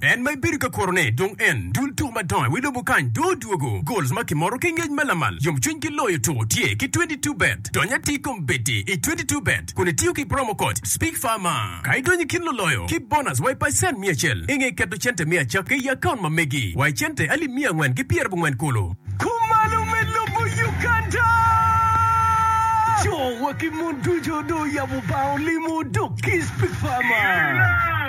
En ma ibedo ka kurone dong en, dul tuko madongo i wi lobo kany dong odwogo. Goals ma kimoro ki ngec ma lamal, yomcwiny ki loyo tuko tye ki twenty two bet. Dony atir i kom beti i twenty two bet kun itiyo ki promo code SPEAKFARMER. Ka idonyo i kin luloyo ki bonus wa i pacent miya acel, inge keto cente me acakki i akaunt ma megi wa i cente alip miya angwen ki pyera abongwen kulu. Kumalo me lobo Uganda. Co wa ki mon ducu dong oyabo bar olimo dok ki SpeakFarmer.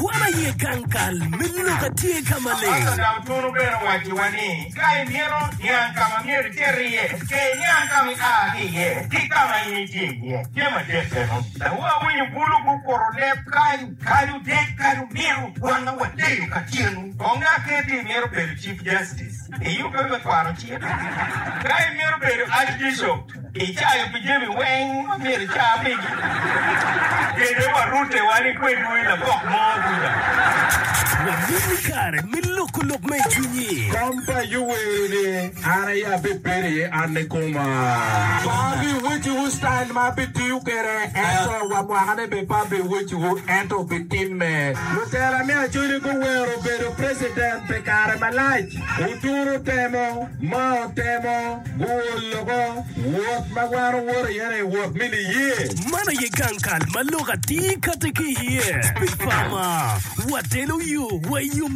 Wan aye gang kal me lok a tye ka maleng. Pastor Dau Tunu bene owacciwa ni, Ka imito niang ka ma myero iter iye, ker iniang ka ma ia ki iye ki ka ma in itye iye. Tye madit bene, dawu awinyo bulu gukuro leb kany. Kadi odek, kadi omiro, wan ma wadeyo ka tyenwu, kong aker ni imito bedo Chief Justice, iyubbe me kwaro cik? Ka imito bedo Archbishop, Icayo pi jami weng ma myero ica pigi. Kede wa rute wan ikwedwu i labok mo duda. Wabin ni kare me loko lok ma i cwinyi. Kom pa Ayub wero ni, An aye abibedo iye, an nikoma. Pe abiweciwu style ma abitiyo kwede, ento wa mwakane bene pe abiweciwu, ento obitimme. Lutela me Acholi guwero bedo president pi kare malac. Oturo temo. ma otemo guo loko wot ma wan owoto iye ni wot me niye. Man aye gang kal ma lok atir kati ki iye. Pi pama, watelo yo wa i yo.